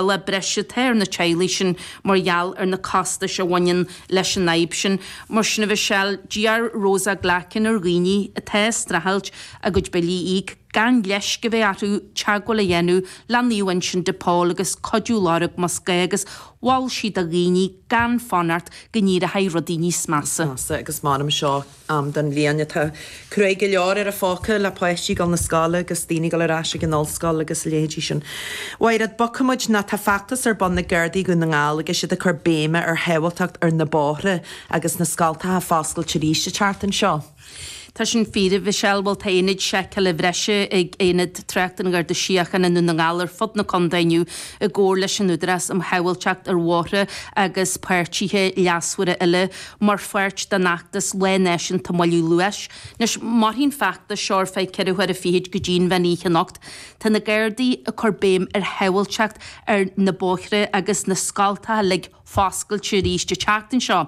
le breise atá ar na teaghlaigh sin mar gheall ar na costais a bhaineann leis an fhadhb sin. Mar sin a Mhichelle, d'iarr Rosa Glackin ar dhaoine atá ag streachailt a gcuid billí a íoc, gan leisc a bheith orthu teagmháil a dhéanamh le Naomh Uinseann de Pól agus cuidiú lorg más gá agus mhol sí do dhaoine gan fanacht go n-éireodh rudaí níos measa. Agus m'ainm seo. am den bhliain atá cruaidh go leor ar an phóca le páistí dul 'na scoile agus daoine dul ar ais ag an ollscoil agus a leithéidí sin. Mhairéad, bogfaidh muid, nó tá feachtas ar bun ag Gardaí Dhún na nGall agus iad ag cur béime ar shábháilteacht ar na bóithre agus na scoltacha foscailte arís an tseachtain seo. Tá sin fíor, a Mhichelle, bhuel tá ionaid seiceála bhreise ag Aonad Tráchta an Gharda Síochána i nDún na nGall ar fud na condae inniu i gcomhar leis an Údarás um Shábháilteacht ar Bhóithre agus páirtithe leasmhara eile. Mar pháirt den fheachtas Lá Náisiúnta Moilliú Luais, anois, mairfidh an feachtas seo ar feadh ceithre huaire fichid go dtí an mheán oíche anocht. Tá na Gardaí ag cur béim ar shábháilteacht ar na bóithre agus na scoltacha uilig foscailte arís an tseachtain seo.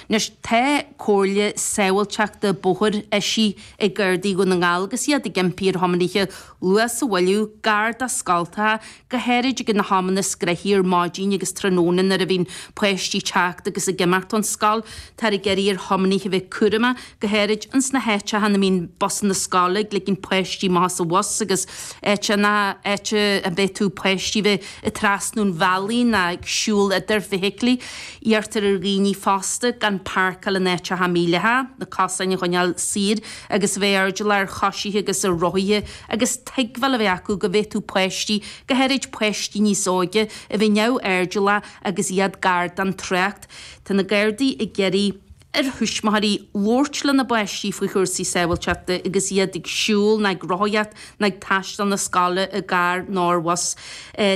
Anois, tá comhairle sábháilteachta bóthair eisithe ag Gardaí Dhún na nGall agus iad ag impí ar thiománaithe luas a mhoilliú gar do scoltacha, go háirid ag na hamanna is gnaithí ar maidin agus tráthnóna nuair a bhíonn páistí ag teacht agus ag imeacht ón scoil. Táthar ag iarraidh ar thiománaithe a bheith cúramach, go háirid ins na háiteacha ina mbíonn busanna scoile ag ligint páistí amach as an bhus agus áiteacha, áit a bhféadfadh páistí a bheith ag trasnú an bhealaigh nó ag siúl idir feithiclí. Iarrtar ar dhaoine fosta gan páirceáil in áiteacha mídhleathacha, na cosáin a choinneáil saor, agus a bheith airdeallach ar choisithe agus ar rothaithe agus tuigbheáil a bheith acu go bhféadfadh páistí, go háirid páistí níos óige, a bheith neamhairdeallach agus iad gar don trácht. Tá na Gardaí ag iarraidh ar thuismitheoirí labhairt lena bpáistí faoi chúrsaí sábháilteachta agus iad ag siúl nó ag rothaíocht nó ag taisteal 'na scoile i gcarr nó ar bhus.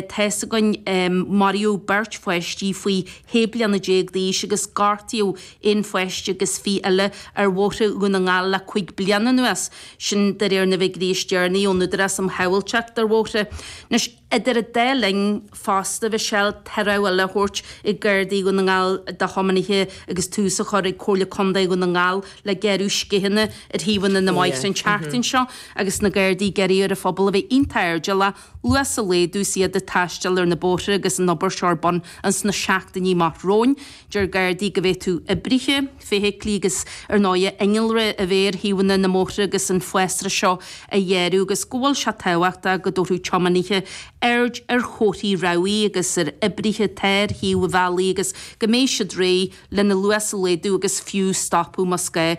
Tá's againn, maraíodh beirt pháistí faoi shé bliana déag d'aois agus gortaíodh aon pháiste agus fiche eile ar bhóithre Dhún na nGall le cúig bliana anuas, sin de réir na bhfigiúirí is deireanaí ón Údarás um Shábháilteacht ar Bhóithre. Anois, idir an dá linn, fosta, a Mhichelle, tá rabhadh eile á thabhairt ag Gardaí Dhún na nGall do thiománaithe agus tús á chur ag Comhairle Contae Dhún na nGall le gearradh scitheanna ar thaobhanna na mbóithre an tseachtain seo agus na Gardaí ag iarraidh ar an phobal a bheith iontach airdeallach luas a laghdú agus iad ag taisteal ar na bóithre agus an obair seo ar bun ins na seachtainí amach romhainn. Deir Gardaí go bhféadfadh oibrithe, feithiclí agus ar ndóigh innealra a bheith ar thaobhanna na mbóithre agus an fásra seo á ghearradh agus go bhfuil sé tábhachtach go dtabharfadh tiománaithe aird ar chomharthaí rabhaidh agus ar oibrithe atá ar thaobh an bhealaigh agus go mbeidh siad réidh lena luas a laghdú agus fiú stopadh más gá.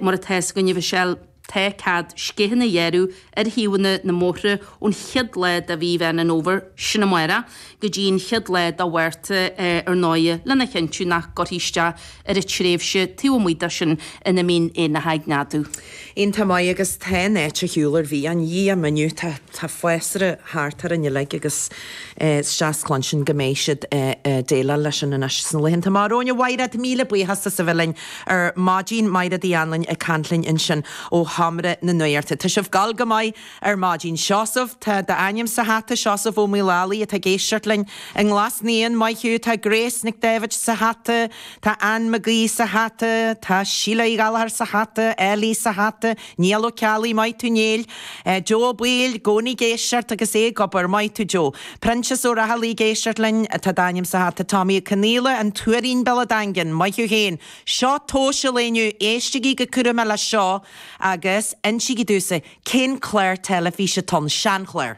Mar atá's againn, a Mhichelle. Tá cead sceacha a ghearradh ar thaobhanna na mbóithre ón chéad lá de mhí Mheán an Fhómhair sin amach go dtí an chéad lá de Mhárta ar ndóigh lena chinntiú nach gcuirtear isteach ar an tréimhse taobh amuigh de sin ina mbíonn éanlaith ag neadú. An-mhaith agus tá áit ar bith a shiúlann muid inniu tá fásra thart orainn uilig agus is deas cluinstin go mbeidh siad ag déileáil leis sin anois sna laethanta amach romhainn. A Mhairéad, míle buíochas as a bheith linn. ar maidin Máire Uí Anluain ag caint linn ansin ó cheantar na nGaorthaí. Tá sibh ag gabháil go maith ar maidin. Seosamh, tá d'ainm sa hata, Seosamh Ó Maolalaí atá ag éisteacht linn i nGlas Naíon, Maigh Eo, tá Grace McDevitt sa hata, tá Anne McGee sa hata, tá Síle Uí Ghallchóir sa hata, Ellie sa hata, Niall Ó Ceallaigh, Maith tú Niall. Joe Ó Baoill, i gcónaí ag éisteacht agus é ag obair. Maith tú Joe. Proinsias Ó Raghallaigh, ag éisteacht linn. Tá d'ainm sa hata. Tommy Ó Conaola, An Tuairín, Baile an Daingin. Maith thú féin. Seo tomhas an lae inniu. Éistigí go cúramach leis seo agus insígí domhsa cén clár teilifíse atá ann. Sean-chlár.